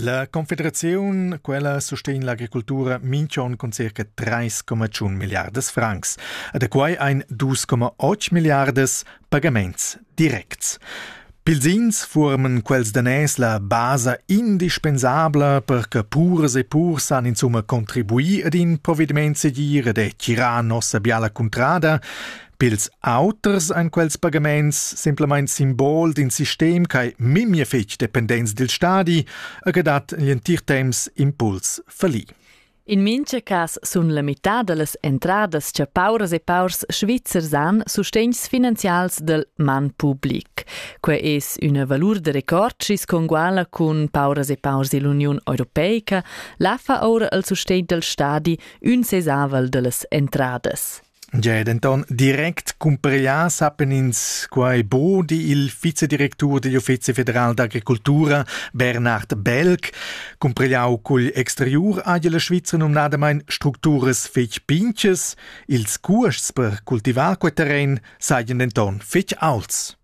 La Confederaziun quella sustegn l'agricultura minch'on cun circa 3,1 milliardas francs. A da quai ein 2,8 milliardas pagaments directs. Pilzins forman quels daners la basa indispensabla per che puras e purs san insumma contribuir ad in provvediment segir ed è tirà nossa biala cuntrada Pils auters ein quels pagaments semplamein simbol d'in sistem che memia fetg dependents dil stadi e che dat egl entir temps impuls falli. In mincha cas sun la mità da las entradas cha pauras e paurs svizzers han sustegns finanzials del man public. Que es üna valur da record chi's conguala cun pauras e paurs ill'Uniun Europeica. La fa oura al sustegn del stadi ün sesavel da las entradas. Tgei ei denton direct cumpreglià sappan ins quei buc, di il vicedirectur digl Uffizi federal d'agricultura Bernhard Belk. Cumpregliau cugl exteriur ha la Svizra numnadamain structuras fetg pintgas. Ils cuosts per cultivar quei terren sajan denton fetg aults.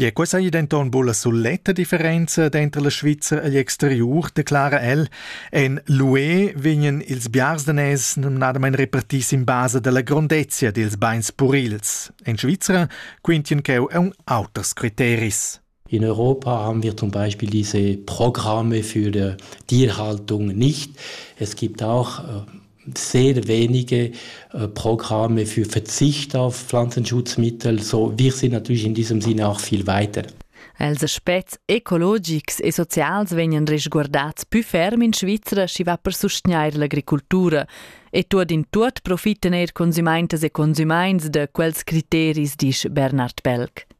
Ja, questa è denton buca la suletta differenza denter la Svizra e l'exteriur, declara el. En l'UE vegnan ils biars danès numnadamain repartis in basa dalla grondezia dils beins purils. En Svizra quintien cheu aun auters criteris. In Europa haben wir zum Beispiel diese Programme für die Tierhaltung nicht. Es gibt auch äh, sehr wenige äh, Programme für Verzicht auf Pflanzenschutzmittel. So, wir sind natürlich in diesem Sinne auch viel weiter. Els aspects ecologics e socials vegnan resguardats più ferm in Svizzera schi va per sustgnair l'agricultura e tuot in tuot profiten eir consumaintas e consumaints da quels criteris, disch Bernard Pelk.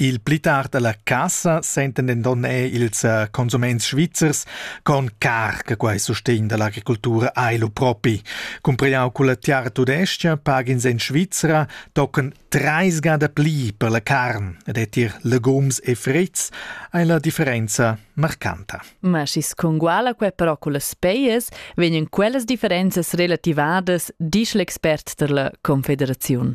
Il pli tard alla cassa sentan denton er ils eh, consuments svizzers con car che quei sustegn dall'agricoltura ei lu propi. Cumpriau culla tiara tudescha pagins en Svizzera tocan treis gada pli per la carn ed è tier legums e frits ei la differenza marcanta. Ma schis conguala quei però culla speias, vegnan quellas differenzas relativadas, disch l'expert dalla Confederaziun.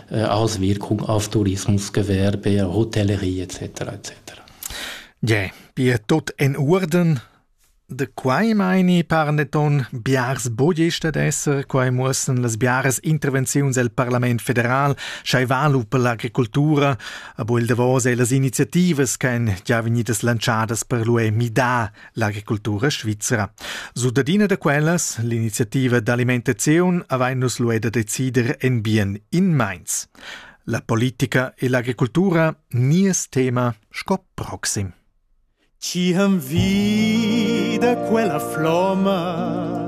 Auswirkung auf Tourismusgewerbe, Hotellerie etc. etc. Yeah, bi tot en Urden De quai meini parneton biars bogies stat esser, quai muossen las biaras intervenziuns el Parlament federal, schai valu per l'agricultura, abo il davos e las iniziativas ch'en già vegnidas lantschadas per l'UE MIDA L'agricultura svizra. Sudadina da quellas, l'iniziativa d'alimentaziun, avain nus lued a decider en bien in meins. La politica e l'agricultura, nies tema sco proxim. Ci ham vi da quella floma